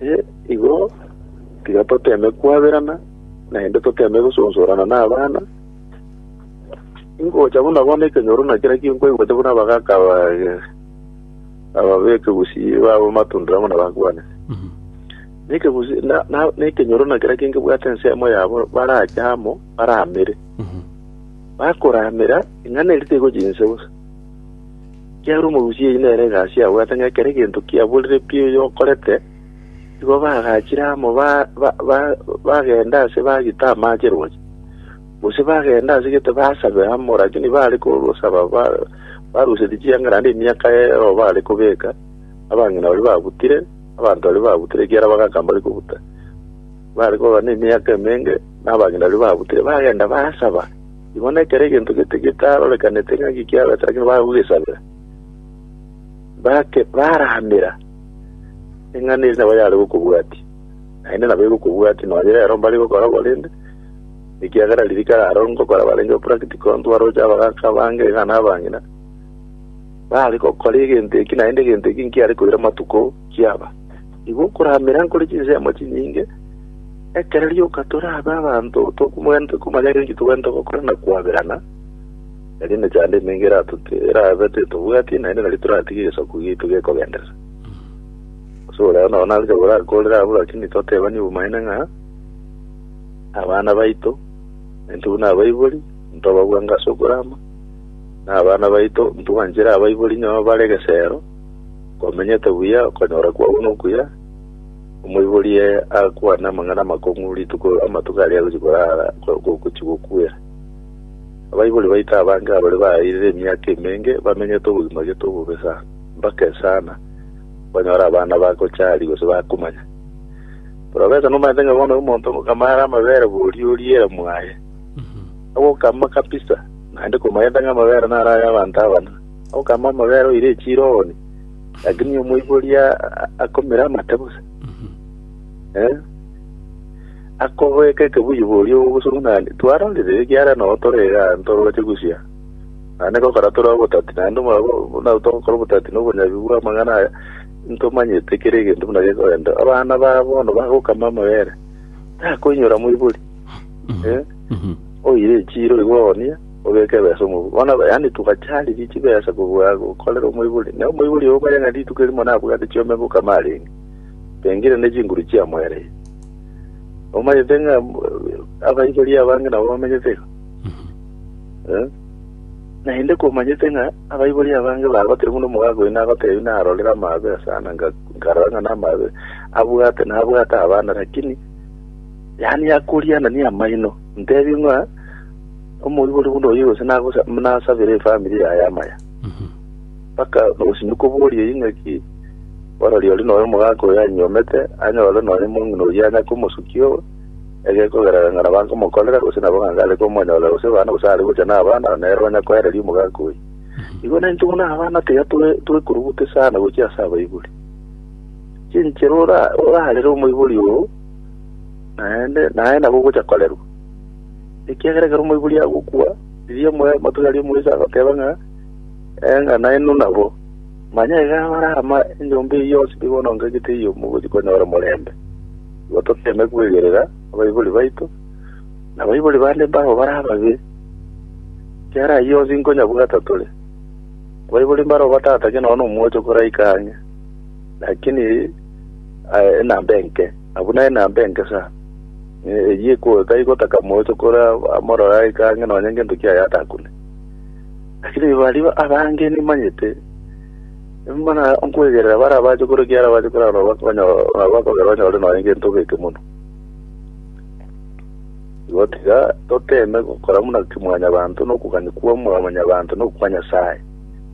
Ee, igo, tiga toteme kwaberana, naende toteme gosonsorana n'abana. Ingocha buna bono ekenyoro na kera kio nkwaigwete buna abagaka aba eh, ababeke gusii babo matundera buna bakwane. Mhm. Nekegusi na- na- nekenyoro na kera kinge bwate ensemo yabo barache amo baramere. Mhm. Bakoramera ing'ana eri tigochi inse bosa. Ekiagera omorusia oyio nere egasi abwate, ng'a ekero egento kiaborire pi oyo okorete, igo bagachire amo ba- ba- ba- bagenda ase bagita amache roche, gose bagenda ase gete basabe amo, rakini bare kosaba ba- barusetie chiang'ara naende emiaka ero bare kobeka, abang'ina baria babutire, abanto baria babutire ekiagera bagaka mbare kobuta. Bare koba nemiaka emenge, na abang'ina baria babutire bagenda basaba. Igo nekero egento gete getarorekaneti ng'aki kiabete lakini bagogesabera, bake baramera eng'ana eria nabo yare gokobwatia, naende nabo egokobwatia nonye rero mbare gokora korende, ekiagera ririka raro ngokora barenge practical ntwaroche abagaka abange iga na abang'ina, bare gokora egento eki naende egento eki nkiare koira amatuko kiaba. Nigo okoramera nkore chinsemo chinyinge, ekero rioka torabe abanto tokomanyete komanya ng'a inki togwete gokora na koaberana, erio emechando emenge eratoti- erabe tetobwati, naende nari toratige egesaku giaito gekogenderera. Gose ore ao nao naroche gorakorera abwo, lakini totebani obomaene ng'a abana baito naintwe buna abaibori, ntobagwanga ase okorama, na abana baito ntwanchere abaibori onye bare egesero, Komenyete buya, okonyora kwao nokuya, omoiborie akwane amang'ana amakong'u rituko amatuko aria agochia korara gochia gokuera. Abaibori baito abange abare baeirire emiaka emenge bamenyete obogima gete obobe sana, mbake sana banyore abana bagochari gose bakomanya. Porofesa nomanyete ng'a bono omonto ngokama are amabere boria oriera mwaye, agokama kabisa, naende komanyete ng'a amabere naro ay'abanto abana. Okama omobere oire echiro oone, lakini omoibori a- a- akomera amate bose. Eh? Akobeke ekebuyu boria ogosuru nani. Twarorire ekiara nao tore iga ntoroche gusia. Naende gokora tore obotati, naende omwabo buna togokora obotati na obonyabi bwa amang'ana aya, ntomanyete kera egento buna gekorenta. Abana ba bono bagokama amabere, takoinyora moibori. Eh? Oire echiro igo oone, obeke ebesa omobuu. Bono yaani togacha riria chibesa kobua gokorera omoibori, na omoibori oyo omanye ng'a rituko erimo nabwate chiombe boka marenge, tengire ne chinguru chiamoereire. Omanyete ng'a eh, abaibori abange nabo bamenyete iga. Eh? naende komanyete ng'a abaibori abange bagotire buna omogaka oyo nagotebi narorire amabe asana nga- nkarora ng'a namabe abwate nabwate abana lakini yaani akoriana ni amaino Ntebie ng'a omoribori buna oyio gose nagosa- nasabere efamiri yaye amaya. Mhm. Mpaka gose nikoborie eyio ng'aki orori ore noyo omogaka oyo anyuomete anyore nonya omong'ina oyio anya komosukia oo egekogerera ng'a nabo ankomokorera gose nabo ng'a ngare komonyorera gose abana gose are gocha nabana na nere onya koereria omogaka oyio. Igo na intwe buna abana tiga tore- torekoruguta esano gochia ase abaibori. Chinchera ora- orarere omoibori oo naende naye nabo ogocha korerwa. Ekiagera ekero omoibori agokwa, riria omoyo omotugi aria omoisa agoteba ng'a, Eh, ng'a nainwe nabo. Manya iga abare ama enyomba eyio yonsi nigo onongegete eyio mogochi konyora omorembe. Igo toteme kwegerera abaibori baito, na abaibori bande mbao bare ababe, ekiagera ayio yonsi nkonyabwata tore. Abaibori mbaro batatakia nonya nomwocho koraika ang'e. Lakini eh, enamba enke abwo na enamba enke sa Eh, eyie ko taigotaka moeto kore amorora aika ang'e nonye ngento kiaye atakune lakini baria abange nimanyete mana nkwegerera bara abache kore kiara abache kore ano bakogera banyore nonye ngento geke mono gotiga toteme gokora muna kimwanyabanto nokogani kwa mwanyabanto nokwa nyasaye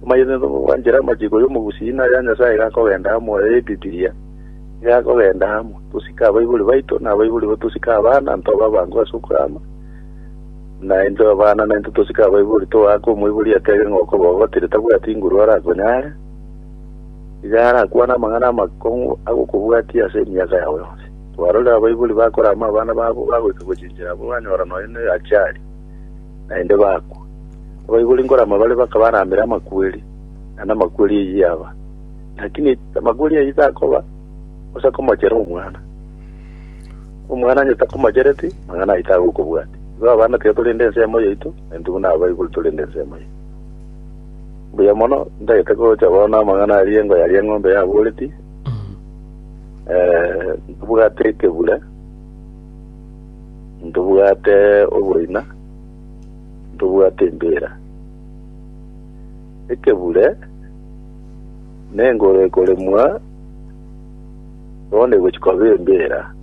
Omanyete tobwanchera amachiko y'omogusii na aya Nyasae gakogenda amo aya y'Ebibilia, nigo agokenda amo, tosike abaibori baito, na abaibori bo tosike abana, ntobe abangu ase okwama, na intwe abana na intwe tosike abaibori, togaaka omoibori atebe ng'a okoboga otiri tabwati nguru arakonyare, iga arakwane amang'ana amakong'u agokobwatia ase emiaka yao yonsi. Twarorire abaibori bakora amo abana babo bagoika gochinchera abwo banyora nonya ne achali. naende bakwa. Abaibori nkorama bare bakaba aramera amakweri, na namakweri eyio yaba. Lakini amakweri ayio takoba, gose akomochere omwana. Omwana onye takomochereti, amang'ana ayio tagokobwati. Igo abana tiga tore ende ensemo yaito, na intwe buna abaibori tore ende ensemo yaito. Mbuya mono, ntagete gocha bono amang'ana aria engo yaria eng'ombe yaboreti, eh, ntobwate ekebure, Ntobwate oboina, ntobwate embeera. Ekebure nengoro ekoremwa, bono egochi koba embeera.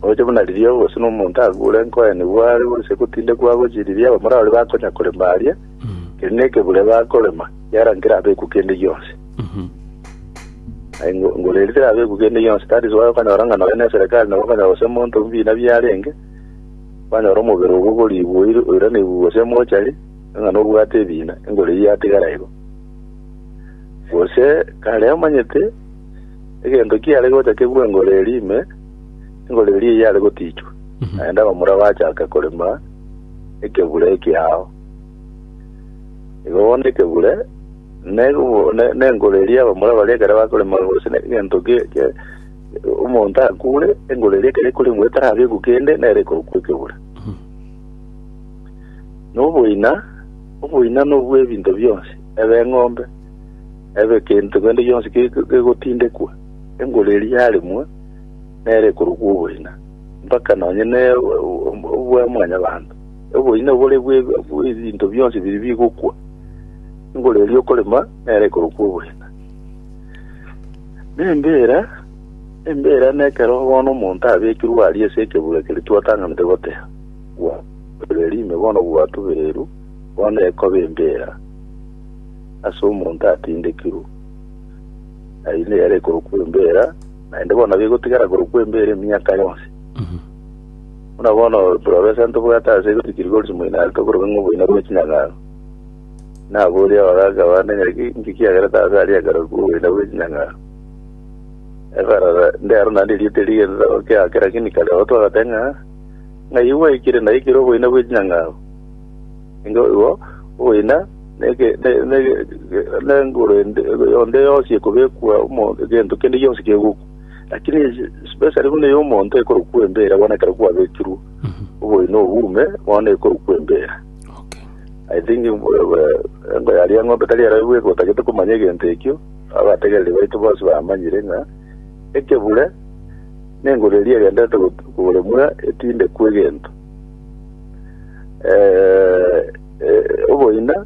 Oche buna riria ogosuna omonto agure nkoenigwe are gose gotindekwa agochi riria abamura baria bakonya korema aria, Erio nekebure bakorema yara nkerabekwe kende gionsi. Aye ngo- ngoreri terabekwe kende gionsi, that is why okanyora ng'a nonya neserekari nabo okanyora gose monto mbina biarenge, kwanyora omobere obo okorigwa oir- oiraneigwe gose mochari, ng'a nobwate ebina, engoreri yatigara igo. Gose kare omanyete, egento kiare gocha kebue engoreri ime, engoreri eye yare gotichwa, naende abamura bachaka korema ekebure ekiao. Igo bono ekebure negobo- ne- nengoro eria abamura baria ekero bakoremwa gose ne- egento gie gie- omonto akure engoro eria ekero ekoremwa etarabekwa kende nere ekobokwa ekebure na oboina oboina na obwa ebinto bionsi ebe eng'ombe ebe egento kende gionsi ge- ge- gegotindekwa engoro eria yaremwa nere ekorokwa oboina mpaka nonye ne o- o- obwa mwanyabanto Oboina obore bw'ebinto bionsi biria bigokwa, engoro eria okorema nero ekorokwa oboina. Nembeera, embeera nekero bono omonto abekirwe aria ase ekebura keria twatanganete goteha, bwa rime bono gwatubereirwe, bono ekoba embeera ase omonto atindekirwe. Aye nere ekorokwa embeera, naende bono nabo egotigara korokwa embeera emiaka yonsi. Buna bono Profesa ntobwate ase igori Gregorys Moinalto okorokwa ng'a oboina bwe chinyang'aro. Naborie abagaaka bande ng'aki inki kiagerete aase aria ekero kwa oboina bwe chinyang'aro. Eberara ndero naende erieta eria rigenzete gokeake lakini kare oo twagoteba ng'a ng'ai gwaikire naikire oboina bwe chinyang'aro. Ingo igo oboina neke ne- ne- ne- nenguru ende- onde yonsi ekobekwa omo- egento kende gionsi kegokwa. Lakini especially buna ey'omonto ekorokwa embeera bono ekero kwabekirwe oboyino obuume bono ekorokwa embeera Okay. I think eh, eh, engo yaria ng'ombe tari ero bweka otagete komanya egento ekio abategereri baito bonsi bamanyire ng'a ekebure nengoro eria egendete got- koremwa etindekwa egento Eh, eh, oboina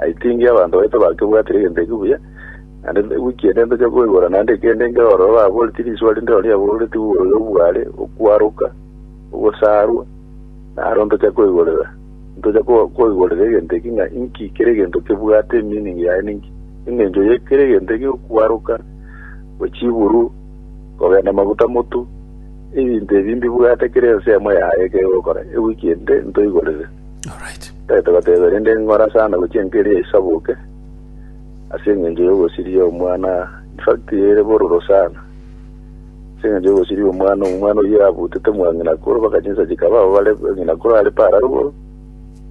I think abanto baito bakebwatire egento eke buya, naende wiki ende ntoche koigora naende kende nkere ororo baboreti riswa rinde rori aboreti oyo bware okwaroka, ogosarwa, naro ntoche koigorera. Ntoche ko- koigorera egento eki ng'a inki kere egento kebwate meaning yaye ninki. Eng'encho ye kere egento eke okwaroka, gwe chiburu, kogenda maguta motu, ebinto ebi mbibwate kere ense emo yaye ekero ogokora. Ewiki ende ntoigorere. Petero agateeba, Erinde inkora sana gochia enka eria isabuke, ase engencho y'obosiria omwana, in fact, ere bororo sana. Ase engencho y'obosiria omwana, omwana oyio abutete mwa ng'ina akoro, mpaka chinsa chikaba abo bare ng'ina akoro are paara rogoro,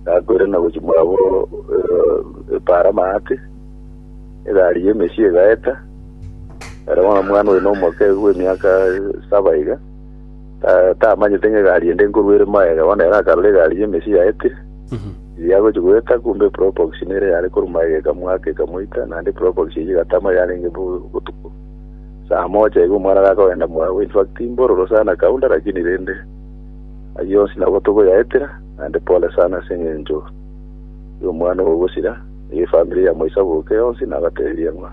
gakoire na gochia mwabo eh, paara amaate, egari y'emesia egaeta, ere bono omwana oyo nomoke bw'emiaka saba iga. tamanyete ng'a egari ende nkorwa ere maega, bono ere akarora egari y'emechie yaetire, eria agochia goeta, kumbe eprobox nere yare korwa maega ekamoaka ekamoita, naende eprobox eyio egatama yarenge bo botuko saa moja iga omwana gakogenda mwago, in fact mbororo sana kaunda lakini rende ayio yonsi nabo togoyaetera, naende pole sana ase eng'encho y'omwana oyo ogosira, eye efamiri ya Mwaisa boka yonsi nabatebirie ng'a.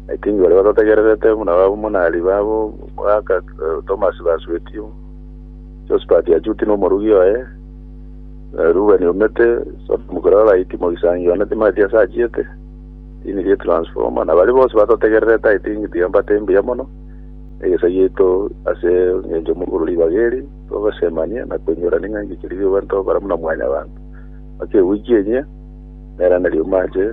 Naitindi baria batotegererete buna abamonari babo mwaka Tomasi basueti, Josphat achuti nomorugi oye, Rubeni omete, Sodomu koria babaiti mogisangi one timaeti ase achiete, tini rie transformer, na baria bonsi batotegererete I think tiambate mbuya mono egesa giaito ase engencho mogoro ribaga eri togosemania na koinyora ning'angi chiri riobani togokora buna mwanyabanto. Mpaka eweek enyia, nera nari omache.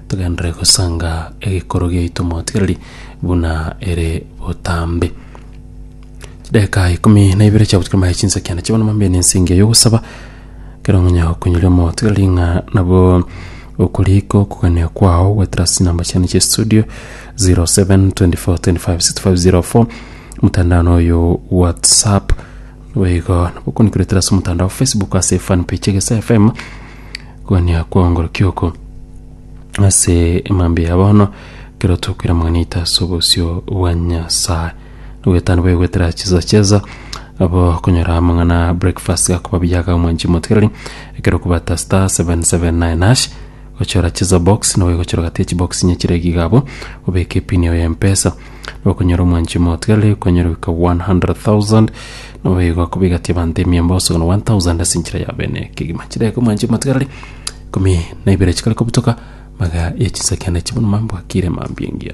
Togenderere gosanga egekoro giaito motigereri buna ere botambe. Chidakika ikomi na ibere chiagotukia maye chinsakia nachibo na mambia nense engiya yogosaba kero ng'onya okonyoria omotigereri ng'a nabo okorika okogania kwao goetera ase chinamba chiane chia estudio 0724256504 motandao na oyo whatsapp boigo nabo okonikoretera ase omotandao facebook ase fanpage egesaia fm Gwania kwaongorokia oko ase emambia ya bono, ekero tokwira amang'ana aito ase obosio bwa Nyasae. Nogoetana bobe goetera chisa chesa, abo konyora amang'ana breakfast gakoba buya aga omwanchi omotigereri, ekero okobata star 779 hash, gochora chisa box, nabo egochora gati ya chibox inye chire iga abwo, obeke epini yao ya mpesa, Bakonyora omwanchi omotigare, konyora goika 100,000, nabo igo akobegatia abanto emia mboso na 1,000 ase enchera ya bene kegima. Chidaka omwanchi omotigare ikomi na ibere chikare kobutoka, maga ya chinsa kiane chibuna mambwakire mambia engiya.